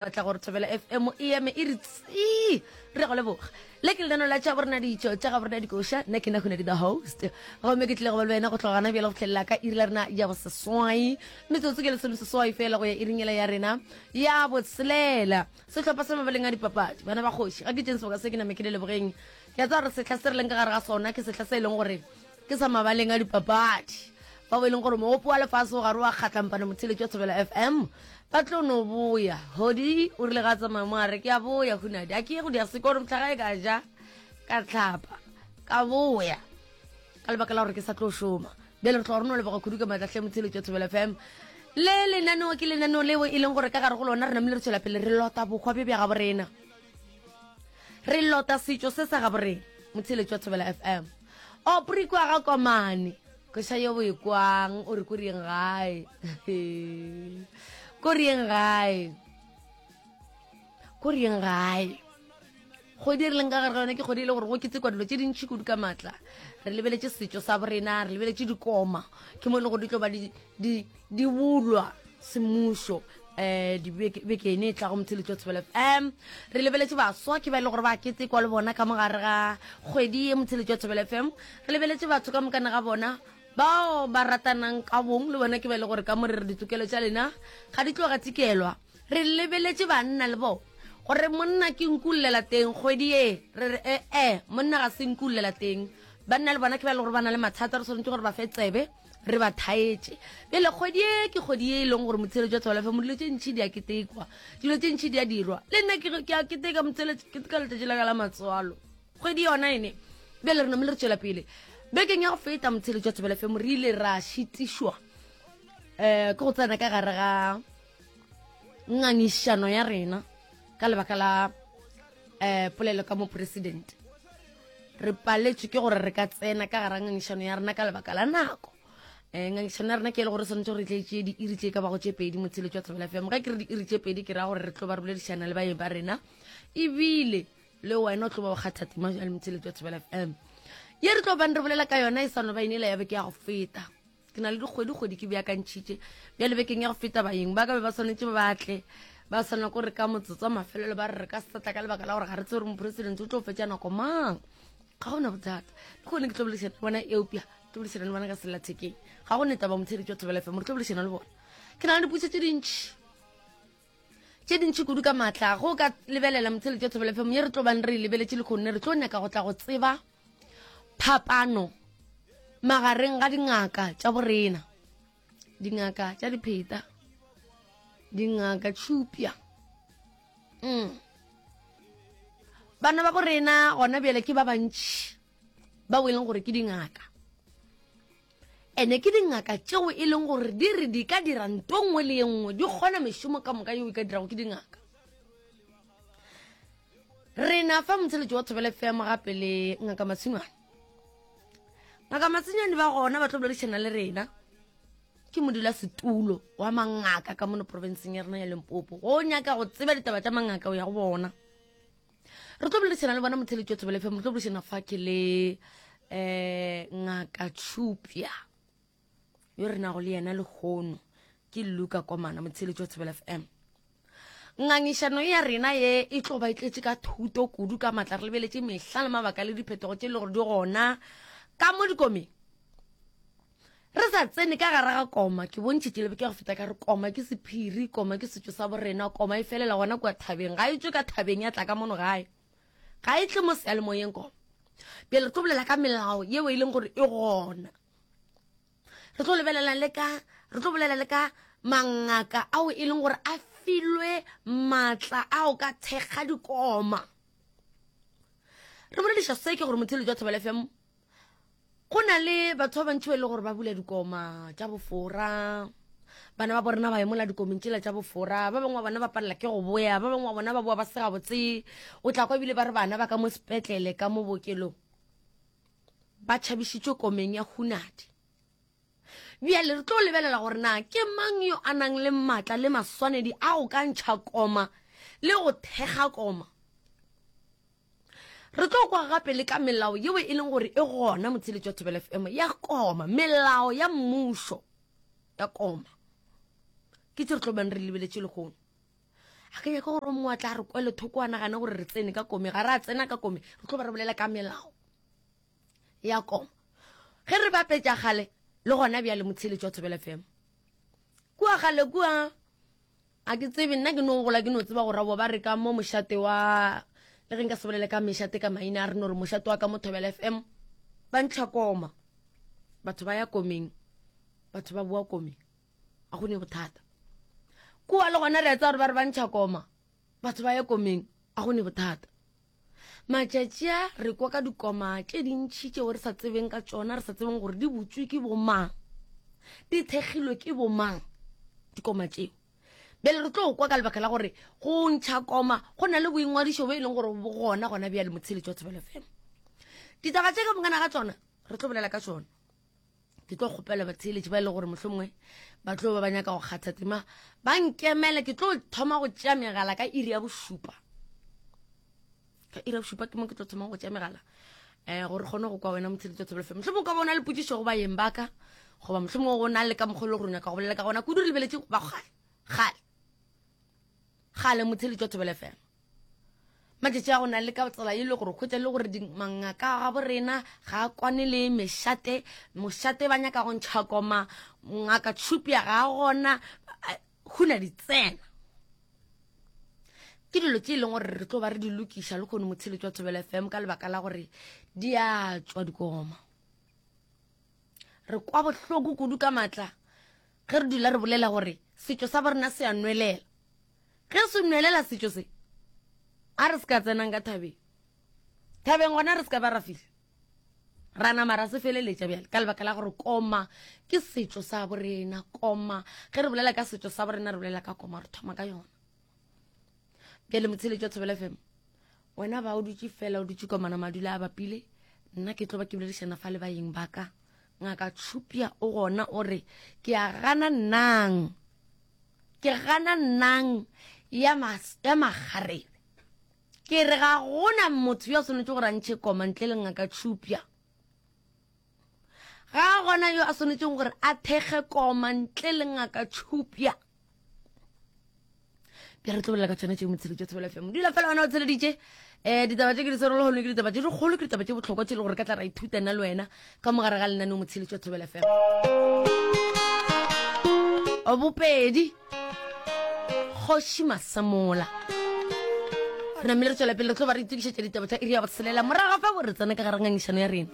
batla gore thobela fm e eme e re tsii re go leboga le ke lenano la tša borena ditšo tša ga borena dikoša nna ke na gone di the host gomme ke tlile go ba le wena go tloga gana bjale go tlhelela ka iri la rena ya boseswai metsotso ke lesome seswai fela go ya iringela ya rena ya botshelela sehlopha sa mabaleng a dipapadi bana ba kgoši ga ke tšeng sebaka se ke name ke le lebogeng ke a tsa gore setlha se re leng ka gare ga sona ke setlha se e leng gore Ke sa mabaleng a dipapadi. Bao e leng gore moopo wa lefase o gare wa kgatlampana motheletši wa Thobela FM ba tlo no boya. Hodi o rile ga a tsamaya mo a re ke a boya hunadi a ke ye go dia seko gore mohlagae ka ja ka tlhapa ka boya ka lebaka la gore ke sa tlo šoma. Bjale re tloga re no leboga khudu ka matlahle motheletši wa Thobela FM le lenaneo ke lenaneo leo e leng gore ka gare go lona re namile re tšwela pele re lota bokgwa bjo bja gabo rena. re lota setšo se sa gabo rena motheletši wa thobela fm opri kwa ga komane kweša yo boekwang o re ko rieng gae ko rieng gae ko rieng gae kgwedi e re leng ka gare ga yone ke kgwedi e le gore go ketekwa dilo tse dintšhi kudu ka maatla re lebeletše setšo sa borena re lebeletše dikoma ke mo e le gore di tlo ba di di di bulwa semmušo um dibekene e tlago motho le tlo tshebela fm re lebeletse baswa ke ba e le gore ba ketekwa le bona ka mogare ga kgwedi ye motho le tlo tshebela fm re lebeletse batho ka mokane ga bona bao ba ratanang ka bong le bona ke ba e le gore ka mo re re ditokelo tša lena ga di tloga tikelwa re lebeletse banna le bone gore monna ke nkulela teng kgwedi ye re re ee eh, eh, monna ga se nkulela teng banna le bona ke ba e le gore ba na le mathata re tshwanetse gore ba fe tsebe re ba thaetše pele kgwedi e ke kgwedi e e leng gore motsheletsi jwa tswalafe mo dilo tse ntšhi di a ketekwa dilo tse ntšhi di a dirwa le nna ke a keteka motsheletsi ke ka letsatsi la ka la matswalo kgwedi yona ene bjale re namele re tswela pele bekeng ya go feta motsheletsi jwa tswalafe mo re ile ra šitišwa um ke go tsena ka gare ga ngangišano ya rena ka lebaka la um polelo ka moporesidente re paletšwe ke gore re ka tsena ka gara ngangišano ya rena ka lebaka la nako um eh, ngangišano ya rena ke e le gore tshwanetse gore re tlaetse diiri tse e ka bago tše pedi motsheletso wa tlhabela fm ga ke re diiri tše pedi ke raya gore re tlo ba re boledišana le baeng ba rena ebile le wena o tlo ba o kgathatima jale motsheletso wa tlhabela fm ye re tlo bang re bolela ka yona e sano ba inela ya beke ya go feta ke na le dikgwedi-kgwedi ke beakantšhitše bjale bekeng ya go feta bayeng ba ka be ba swanetše ba batle ba swana ko re ka motsotso wa mafelelo ba re re ka setla ka lebaka la gore ga re tse gore moporesidente o tlo fetša nako mang ga gona bothata le gone ke tlo boledišana le bona eopja ke tlo boledišana le bona ka sellathekeng ga go neta ba motheletšwa thobela fm re tlo boledišana le bona ke na le diputso tse dintšhi tše dintši kudu ka maatla go ka lebelela motsheletši wa thobelephemong ye re tlo bang re e lebeletše lekgonne re tlo nyaka go tla go tseba phapano magareng ga dingaka tša borena dingaka tša dipheta dingaka tšhupja mm. bana ba borena gona bjale ke ba bantši ba o e leng gore ke dingaka Ene ke dingaka tšeo e leng gore di re di ka dira nto nngwe le ye nngwe di kgona mešomo ka moka yeo e ka dirago ke dingaka re na fa motsheletši wa thobele fm gape le ngaka matshingwane ngaka matshingwane ba gona ba tlo boledišana le rena ke modula setulo wa mangaka ka mono provinceng ya rena ya lempopo go nyaka go tseba ditaba tša mangaka o ya go bona re tlo boledišana le bona motheletši wa tsebele fm re tlo boledišana fa ke le um ngaka tšhupja yo re nago le yena lehono ke luka komana motheletši wa tsebele fm ngangišano ya rena ye e tlo ba e tletše ka thuto kudu ka matla re lebeletše mehla le mabaka le diphetogo tše e le gore di gona ka mo dikomeng re sa tsene ka gare ga koma ke bontšhetše lebeke go feta ka re koma ke sephiri koma ke setšo sa borena koma e felela gona kua thabeng ga e tswe ka thabeng ya tla ka mono gae ga e tle mo sealemoyeng koma pele re tlo bolela ka melao yeo e leng gore e gona re tlo lebelela le ka re tlo bolela le ka mangaka ao e leng gore a filwe maatla ao ka thekga dikoma re bolediša se ke gore motheletso wa thobela fm go na le batho ba bantši ba e le gore ba bula dikoma tša bofora bana ba borena ba emola dikomeng tsela tša bofora ba bangwe wa bona ba palela ke go boya ba bangwe wa bona ba boa ba sega botse o tla kwa ebile ba re bana ba ka mo sepetlele ka mo bookelong ba tšhabišitšwe komeng ya hunadi bjale re tlo lebelela gore na ke mang yo a nang le maatla le maswanedi a go ka ntšha koma le go thekga koma Re tlo kwa gape le ka melao yeo e leng gore e gona motheletši wa Thobela FM ya koma melao ya mmušo ya koma ke tse re tlo bang re lebeletše legono a ka nyaka gore o mongwe a tla re kwele thoko a nagane gore re tsene ka kome ga re a tsena ka kome re tlo ba re bolela ka melao ya koma ge re bapetša gale le gona bjale motheletši wa Thobela FM kua gale kua A ke tsebe, nna ke no gola ke no tseba gore abo ba re ka mo mošate wa, le ge nka se bolele ka mešate ka maina a re no re mošate wa ka mo Thobela FM, ba ntlha koma. Batho ba ya komeng, batho ba boa komeng. A go ne go thata. Kua le gona re a tseba gore ba re ba ntlha koma, batho ba ya komeng. A go ne go thata. matšatši a re kwa ka dikoma tše dintšhi tšeo re sa tsebeng ka tšona re sa tsebeng gore di butswe ke bomang di thekgilwe ke bomang dikoma tšeo bele re tlo kwa ka lebaka la gore go ntšha koma go na le boingwadišo bo e leng gore bo gona gona bjale motsheletšo wa thobelo fela ditaba tše ka bongana ga tsona re tlo bolela ka tsona ke tlo kgopela batheeletši ba e le gore mohlomongwe ba tlo ba ba nyaka go kgatha tema ba nkemele ke tlo thoma go tšea megala ka iri ya bošupa ka iri ya bošupa ke mo ke tlo thoma go tšea megala um gore kgone go kwa wena motheeletši wa thobelofela mohlomongwe ka bona le potsišo go bayeng baka goba mohlomongwe go na le ka mokgolo gore o nyaka go bolela ka gona kudu re lebeletše ba kgale kgale kgale motheeletši wa thobelofela matšatši a go na le ka tsela e le gore kgwetsa le gore mangaka a gabo rena ga a kwane le mešate mošate ba nyaka go ntšha koma ngaka tšhupia ga a gona go na ditsena ke dilo tse e leng gore re tlo ba re di lokiša le kgone motsheletso wa thobela fm ka lebaka la gore di a tswa dikoma re kwa bohloko kudu ka maatla ge re dula re bolela gore setšo sa borena se a nwelela Ge se nwelela setšo se, a re se ka tsenang ka thabeng. Thabeng gona re se ka ba ra fihla. Ra nama ra se feleletša bjale ka lebaka la gore koma ke setšo sa borena. Koma, ge re bolela ka setšo sa borena re bolela ka koma, re thoma ka yona. Bjale motsheletšo Thobela FM, wena ba o dutše fela o dutše komana madula a bapile, nna ke tlo ba ke boledišana fa le bayeng ba ka. Ngaka Tshupia o gona o re, Ke a gana nang, ke gana nang ya, mas, ya makgarebe. Ke re ga gona motho yo a swanetše gore a ntšhe koma ntle le Ngaka Tshupia. Ga gona yo a swanetšeng gore a thekge koma ntle le Ngaka Tshupia. bja re tlobelela ka tshwana tše motshelo tša thobela fm dula fela wena o tsheleditše um ditaba tše ke di swerolo gone ke ditaba tše dikgolo ke ditaba tše botlhokwa tse e le gore ka tla ra ithuta nna le wena ka mogare ga lenaneo motshelo tša thobela fm bopedi kgoši masamola re namile re tswela pele re tlo ba re itokišetša ditaba tsa iri ya botshelela morago fa bo re tsena ka garangangišano ya rena